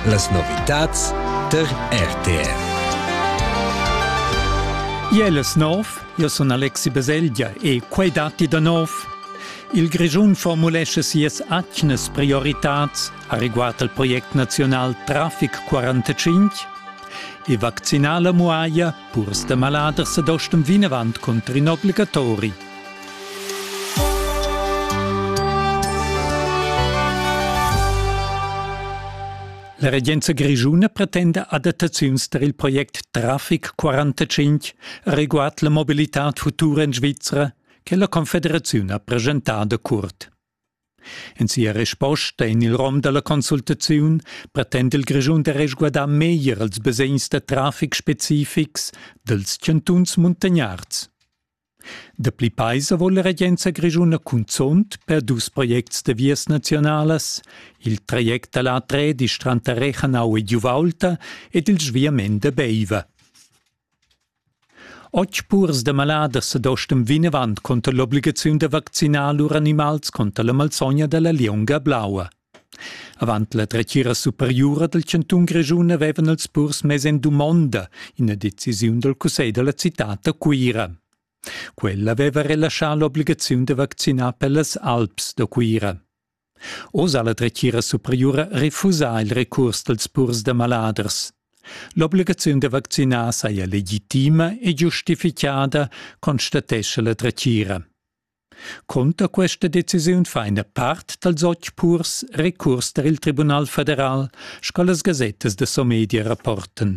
Las novitads tar RTR. Jeles nov, io sun Alexi Beselgia e quei datti da nov. Il Grischun formulesce sias atgnas prioritats a riguard al project nazional Traffic 45 e vaccinala muaia Purs da maladers ed ostem vinavant cunter in obligatori. La regenza grischuna pretenda adattaziuns per il project Traffic 45 riguard la mobilitad futura en Svizra che la Confederaziun ha presentado curt. En sia resposta en il rom da la consultaziun pretenda il Grischun da resguardar meglier ils basegns da traffic specifics dals chantuns muntagnards. Dapli paisa vuol la regenza grischuna cunzunt per dus projects da vias nazionalas, il traject da l'A3 di Stranta Rechanau e Giuvaulta ed il sviament da Beiva. Otg purs da maladers sedostan vinavant cunter l'obligaziun da vaccinar lur animals cunter la malsogna da la lieunga blaua. Avant la dretgira superiura dal chantun Grischun avevan els purs mess en dumonda ina decisiun dal cussegl da la citad da Cuira. Quella aveva relaschà l'obligaziun da vaccinar per las Alps da Cuira. Oz ha la dretgira superiura refusà il recurs dals purs da maladers. L'obligaziun da vaccinar saja legitima e giustifichada, constatescha la dretgira. Cunter questa decisiun fa ina part dals otg purs recurs tar il Tribunal federal, sco las gasettas da Somedia rapportan.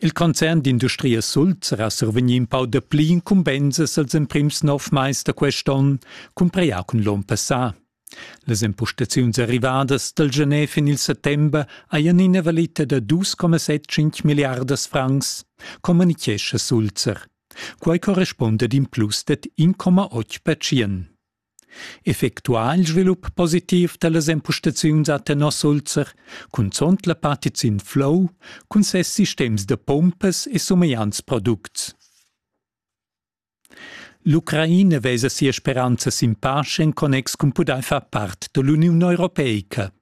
Il concern d'industria Sulzera survegni in pau dapli incumbensas als emprims nov mais da quest onn, cumpreià cun l'onn passà. Las empustaziuns arrivadas dal Genef en il settember hajan ina valita da 2,75 milliardas francs, communichescha Sulzer. Quai correspunda ad in plus dad 1,8 percent. Effectuà il svilup positiv da las empustaziuns a tenor Sulzer, cunzont la partiziun Flow cun ses sistems da pumpas e sumegliants products. L'Ucraina vesa sia speranza sin pace en connex cun pudair far part da l'Uniun europeica.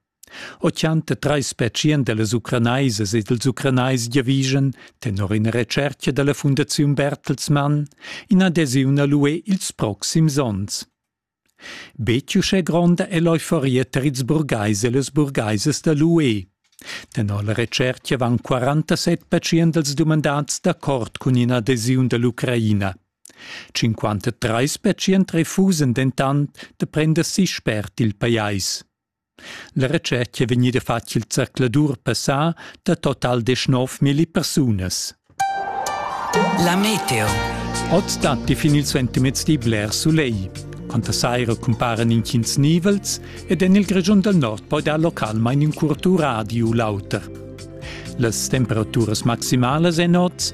Ochanta trais pertschient da las Ucranaisas e dals Ucranais giavischan, tenor ina retschertga da la Fundaziun Bertelsmann, in adesiun a l'UE ils proxims onns. Betg uschè gronda è l'euforia tar ils burgais e las burgaisas da l'UE. Tenor la retschertga van 47 pertschient dals dumandads d'accord cun in'adesiun da l'Ucraina. 53 pertschient refusan dentant da prender si spert il pajais. La retschet è vegnida fatg il zercladur passà da total deschnov milli persunas. La meteo. Oz datti fin il suentermezdi bler sulegl. Quanta saira cumparan intgins nivels ed en il Grischun dal nord poi dar localmain in curt radio u l'auter. Las temperaturas maximalas èn oz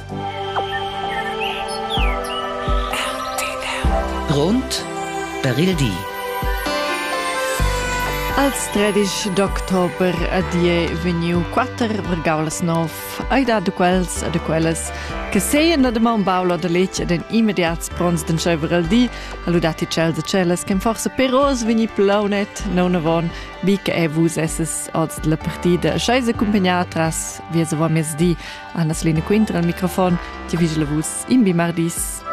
Grond per il di. Als tredisch d'october a die veniu quatter vergaulas nov, ai da de quels a de quellas che seien da de maun baula de lec ed en immediats pronts den sceiver al di, alludati cel de celas che forse peros veni plaunet non avon, bi che e vus esses oz della partida, schei se accompagnar tras via se vor mezdi Anna Selina Quinter al microfon, ti vigel vus in bi mardis.